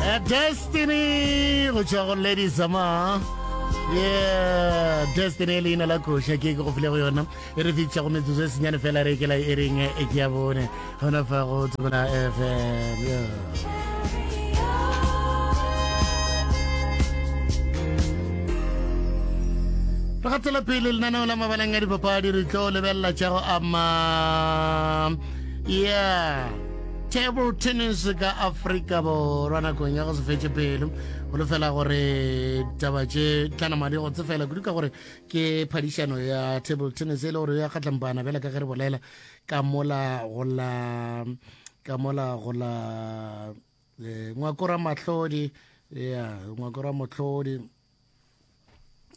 A Destiny go tšwa go Lady Zama yeah Destiny e leina la koša ke ke go file go yona e re fitša go metsotso e senyane fela re kela e reng e ke ya bone gona fa go tsomana fm yeah. re gatsela pele lenaneo la mabalang a dipapadi re tlo lebelela tša go ama yeah table tennis ka afrika borwa nakong ya go se fetse pelo go lefela gore taba tše tlanamadi go tsefela kudu ka gore ke phadišano ya table tennis e le gore ya kgatlampana bjale ka ge re bolela ka mola go la ka mola go la eh, ngwakora mahlodi ya ngwakora mahlodi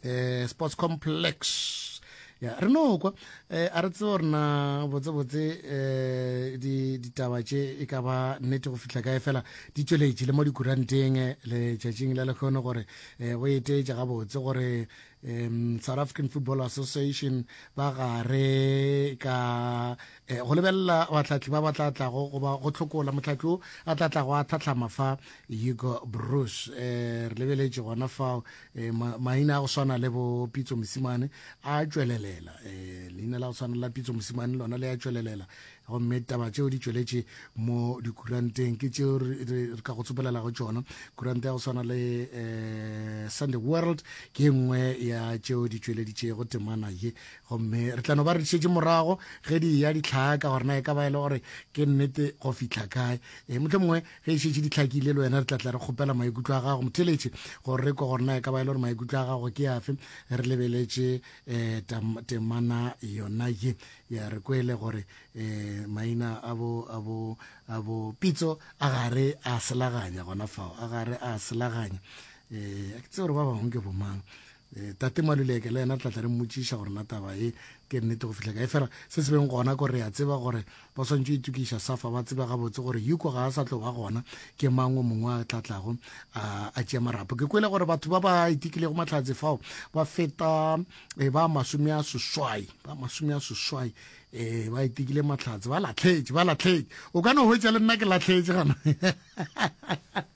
eh sports complex ya re no kwa eh a re tsebo rena botse botse eh di ditaba tše e ka ba nnete go fihla kae fela di tšweletše le mo dikuranteng eh, le tšatšing la lekgono gore eh go eteetša ga botse gore um South African Football Association ba gare ka Eh, go lebelela batlatli ba ba tla tlago goba go tlhokola motlatli o a tla tlago a tlhatlhama fa hugo bruce um re lebeletše gona fao eh, maina a go swana le bo pitso mosimane a tšwelelela um leina la go tshwana la pitso mosimane lona le a tšwelelela gomme taba tšeo di tšweletše mo dikuranteng ke tšeo re ka go tsopelelago tšona kurante ya go swana le um sunday world ke nngwe ya tšeo di tšweleditšego temana ye gomme re tla no ba re dišetše morago ge di ya ditlhaka gore na e ka ba e le gore ke nnete go fitlha kae e motlho mongwe ge e šetše ditlhakile le wena re tla tla re kgopela maikutlo a gago motheletše gore re kwa gore na e ka ba e le gore maikutlo a gago ke afe re lebeletše um temana yona ye ya re kwele gore um maina a bo a bo a bo pitso a gare a selaganya gona fao a gare a selaganya um ke tse gore ba bangwe ke bomang E, tate maluleke le yena re tla tla re mmotšiša gore na taba ye ke nnete go fihla kae fela se se beng gona ko re a tseba gore ba swantšo itokiša safa ba tseba gabotse gore yuko ga a sa tlo ba gona ke mang o mongwe a tlatlago a tšea marapo ke kwele gore batho ba ba itikilego mahlatse fao ba feta e, ba masome a seswai ba masome a seswai e ba itikile mahlatse ba latlhetše ba latlhetše o ka no hwetša le nna ke latlhetše gana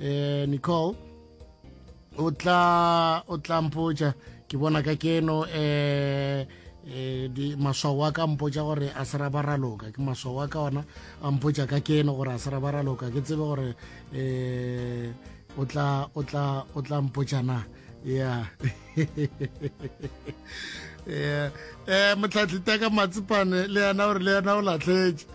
eh nicole o tla o tla mpotša ke bona ka keno eh eh di maswao a ka mpotša gore a sera ba raloka ke maswao a ka ona a mpotša ka keno gore a sera ba raloka ke tsebe gore eh o tla o tla o tla mpotša na yeah eh eh motlhatlhita ka matsipane le yena gore le yena o latlhetše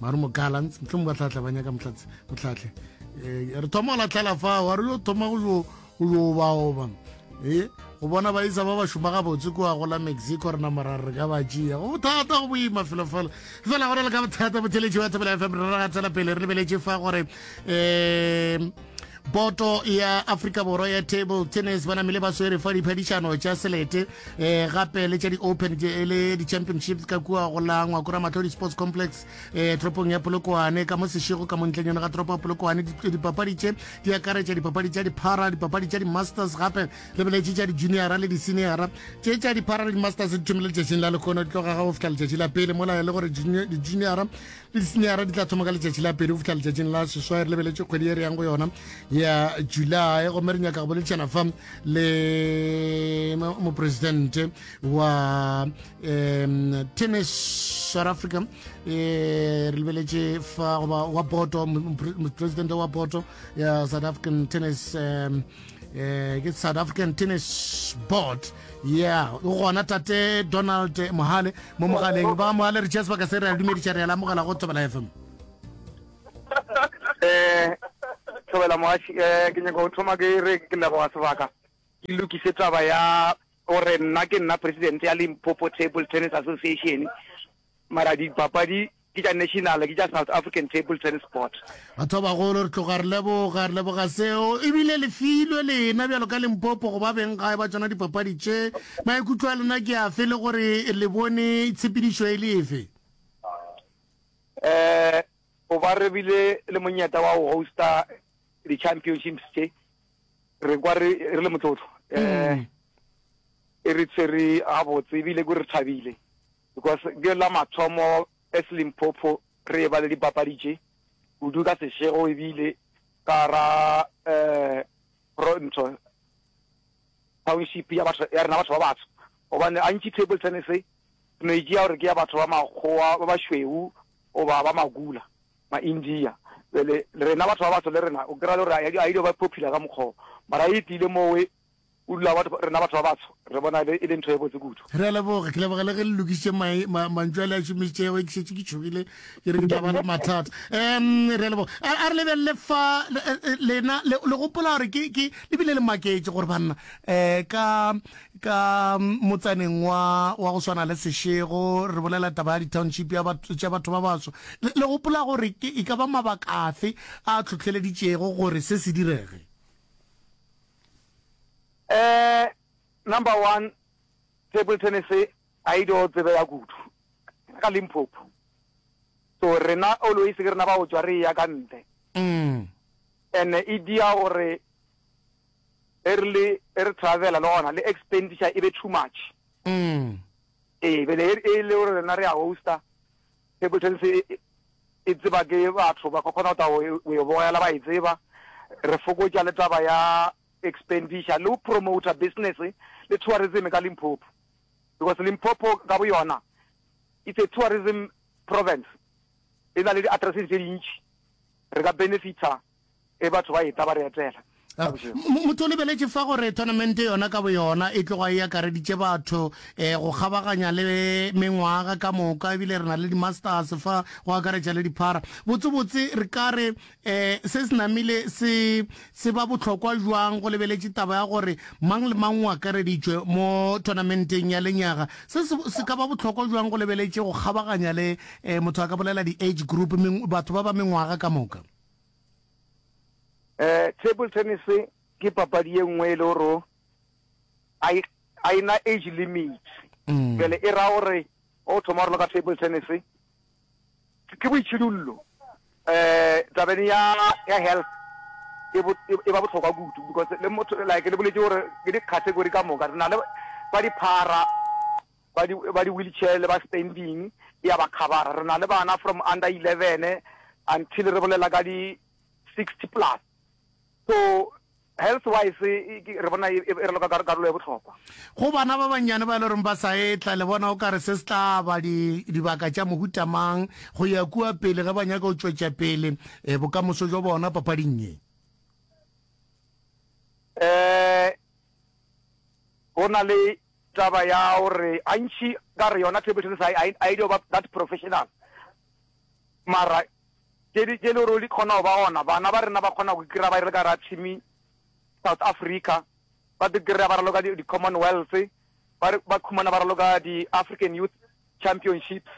mare mokala ntle mo ba tlatla ba nyaka motlatse motlatle eh, re thoma go latlhela fa wa re yo thoma go yo go yo ba oba e go bona ba isa ba ba šoma ga botse kwa go la mexico rena morare re ka ba tšea go bothata go boima felo fela fela go na le ka bothata botheletši wa thapela fm re ra tswela pele re lebeletše fa gore um boto ya afrika borwa ya table tennis ba namile ba swere fa diphadišano tša selete um gape le tša di-open e le di-championships ka kua go la ngwakora matlho di-sports complex um toropong ya polokwane ka mo sešego ka montleng yone ga toropo ya polokwane dipapadi tše di akaretša dipapadi tša diphara dipapadi tša di-masters gape le beletše tša di-juniora le di-seniora tše tša diphara le di-masters di thomile letšatšing la lekgono di tloga ga go fihla letšatši la pele mola e le gore di-juniora le disenyara di tla thoma ka letšatši la pedi go fitlha letšatšing la seswai re lebeletše kgwedi e re yang go yona ya july gomme re nyaka go boledišana fa le mopresidente wa um tennis south africa um re lebeletše fa goba wa boto mopresidente wa boto ya south african tennis um eh ke south african tennis board yeah o gona tate donald mohale mo mogaleng ba mohale re chess ba ka se re a dumediša re ya lamogela go thobela fm eh thobela mogaši eh ke nyaka go thoma ke re ke leboga sebaka ke lokise taba ya gore nna ke nna president ya limpopo table tennis association Mara dipapadi ke tša national, ke tša South African Table Tennis Board. Batho ba bagolo re tloga re leboga, re leboga seo. Ebile le filwe lena bjalo ka Limpopo go ba beng gae ba tsona dipapadi tše. Maikutlo a lena ke afe le gore le bone tshepedišo e le efe? Eh, go ba re bile le monyeta wa go hosta di-championships tše re kwa re re le motlotlo. Eh, e re tshwere gabotse ebile ko re thabile. Because ke la mathomo as Limpopo re e ba le dipapadi tše kudu ka sešego ebile ka ra eh pro ntho township ya batho ya rena batho ba batsho gobane gantši table tennis e no e tšea gore ke ya batho ba makgowa ba bašweu goba ba magula ma-india jale rena batho ba batsho le rena o kry-a le gore a ile ba popular ka mokgoo mara e tlile mowe Kudula rena batho ba batsho re bona e le ntho e botse kudu. Re a leboga. Ke leboga le ge le lokišitše mantšu a le a šomišitšego. Ke šetše ke tšhogile ke re ke tla ba le mathata. Um re a leboga. A re lebelele fa lena le gopola gore ke le bile le maketše gore banna um ka ka motsaneng wa wa go swana le Seshego re bolela taba ya di-township ya tša batho ba batsho. Le gopola gore e ka ba mabaka afe a tlhotlheleditšego gore se se direge? Eh number one table tennis ga e dio tsebe ya kudu ka Limpopo so rena always ke rena ba go tswa re ya ka ntle mm. and e dia gore e re le e re travela le gona le expenditure e be too much mm. ee bele e le gore rena re ya hosta Table tennis e tseba ke batho ba ka kgona go ta go e bogela ba e tseba re fokotša le taba ya expenditure le go promoter business le tourism ka Limpopo because Limpopo ka bo yona it's a tourism province e na le di-addresses tse dintši re ka benefita e batho ba eta ba re etela. Ka bošego. Motho o lebeletše fa gore tournamente yona ka boyona e tloga e akareditše batho um go kgabaganya le mengwaga ka moka ebile re na le di-masters fa go akaretša le diphara. Botsebotse re ka re um se se namile se se ba bohlokwa bjang go lebeletše taba ya gore mang le mang o akareditšwe mo tournamenteng ya lenyaga? Se se se ka ba bohlokwa bjang go lebeletše go kgabaganya le um motho a ka bolela di-age group, batho ba ba mengwaga ka moka? Eh, table tennis ke papadi ye nngwe e le gore a e- a e na age limit Mm. jale e ra gore o thoma gore le ka table tennis ke- ke boitšhidullo eh tabeng ya ya health e bo- e- e ba bohlokwa kudu because le motho like le boletse gore ke di-category ka moka re na le ba diphara ba di ba di wheelchair le ba standing ya ba khabara re na le bana from under 11 until re bolela ka di 60 plus so health wise re bona e, e, e re loka karolo ya botlhokwa go bana ba bannyane ba e le goreng ba sa etla le bona o ka re se se tla ba dibaka tša mohutamang go ya kua pele ge ba nyaka go tšwetša pele um eh, bokamoso jwa bona papading ye um eh, go na le taba ya gore gantši ka re yona table tennis a e dio ba that professional mara tše le gore di kgona go ba gona bana ba rena ba kgona go kry-a ba e re ka ra team south africa ba di kry-a ba raloka di-commonwealth ba khumana ba raloka di-african youth championships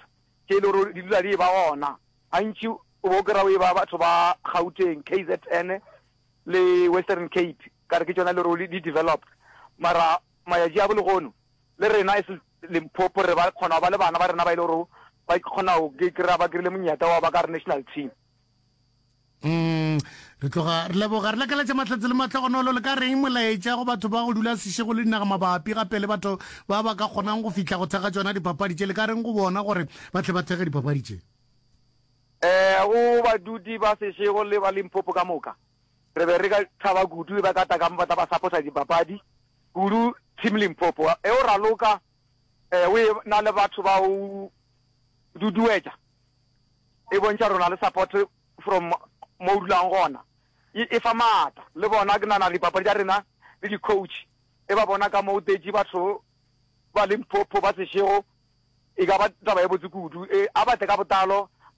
tše le gore di dula di e ba gona gantši o bo kry-a o e ba batho ba gauteng k z n le western cape ka re ke tšona le ruri di developed mara mayatši a bo legono le rena as Limpopo re ba kgona ba le bana ba rena ba ile gore ba kgona go kry-a ba kry-ile monyata wa ba ka re national team Mm, re tloga re leboga re lakaletša mahlatse le matlhogonolo le ka reng molaetša go batho ba go dula sešego le dinaga mabapi gape le batho ba ba ka kgonang go fihla go thekga tsona dipapadi tše le ka reng go bona gore ba tle ba thekge dipapadi tše um go badudi ba sešego le ba limpopo ka moka Re be re ka thaba kudu e ba ka tla ka mo ba tla ba saposa dipapadi kudu Team Limpopo e o raloka eh, o e na le batho ba o duduetša e bontšha rona le support from mo o dulang gona e, e fa maata le bona ke nana dipapadi tša rena le di-coach e ba bona ka mo o tetše batho ba limpopo ba sešego e ka ba taba e botse kudu e a batle ka botalo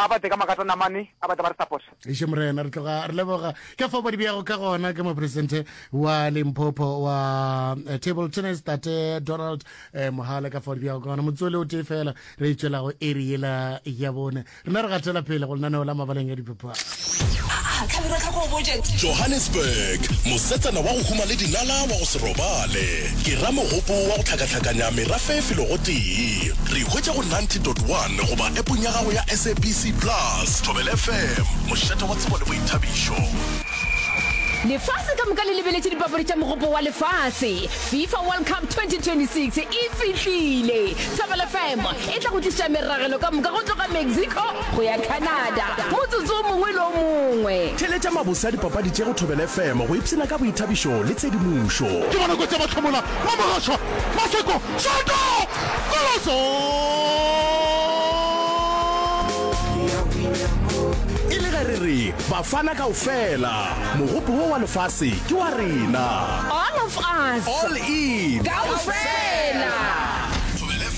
a batle ka makata namane a batla ba re saposa Eish morena re tloga re leboga ke fo bodi bjago ka gona ke mopresidente wa limpopo wa eh, table tennis tate donald eh, mohale ka fodi bjago ka gona motsole o tee fela re e tšwelago eri yela ya bone rena re gatela pele go lenaneo la mabaleng ya dipapadi Johannesburg, mosetsana wa go huma le dinala wa go se robale, ke ramogopo wa go hlakahlakanya merafe e filogo tee. Re ikhwetša go 90.1 goba appong ya gago ya SABC Plus. Thobela FM, mošate wa tsebo le boithabišo. Lefase ka moka le lebeletše dipapadi tša Mogopo wa Lefase, FIFA World Cup 2026 e fihlile. Thobela FM e tla go tliša meragelo ka moka go tloga Mexico go ya Canada, motsotso o mongwe le o mongwe. Theeletša mabose a dipapadi tše go Thobela FM go ipshina ka boithabišo le tshedimošo. Ke bonako tša mahlomola mo Mogashoa, Maseko, Shoto, Koloso! E le ge re re Bafana kaofela, mogopo wo wa lefase ke wa rena. All of us. All in. Kaofela.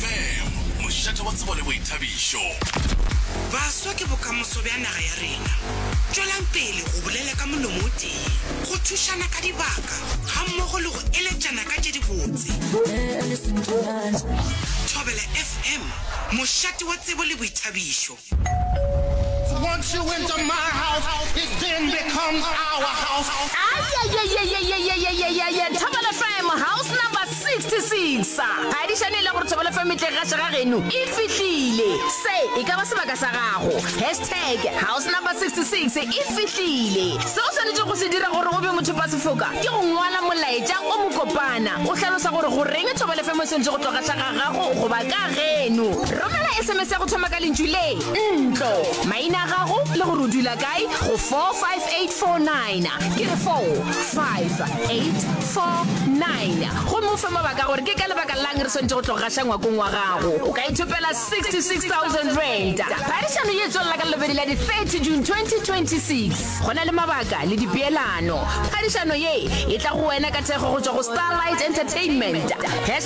Bam! Mošate wa tsebo le boithabišo. Baswa ke bokamoso bja naga ya rena. Tšwelang pele go bolela ka molomo o tee, go thušana ka dibaka gammogo le go eletšana ka tše dibotse. Thobela FM, mošate wa tsebo le boithabišo. Once you enter my house, it then becomes our house. Ayayayayayayayayayaya Thobela FM house number 66 ga di šane e le gore Thobela FM e tle ga šega geno e fihlile se e ka ba sebaka sa gago hashtag house number 66 e fihlile se o swanetše go se dira gore o be motho ba sefoka ke go ngwala molaetša o mokopana o hlalosa gore goreng Thobela FM e swanetše go tloga šega gago goba ka geno romela sms ya go thoma ka lentšu le ntlo maina a gago le gore o dula kae go 45849 ke re 45849 gomme o fe mabaka gore ke ka lebaka lang re swantse go tlo gaša ngwakong wa gago o ka ithopela 66000 rand phadišano ye tswelela ka lelobedi la di-30 june 2026 go na le mabaka le dipeelano phadišano ye e tla go wena ka thekgo go tswa go starlight entertainment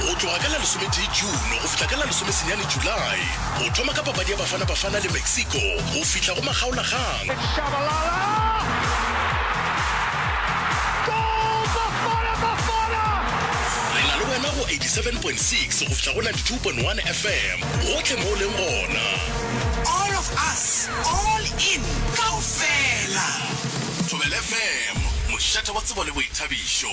Go tloga ka la lesometee June go fihla ka la lesomesenyane July, o thoma ka papadi ya Bafana Bafana le Mexico go fihla go makgaolagang. It's Shabalala! Goal Bafana Bafana! Re na le wena go 87.6 go fihla go 92.1 FM gohle mo o leng gona. All of us, all in, kaofela! Thobela FM, mošate wa tsebo le boithabišo.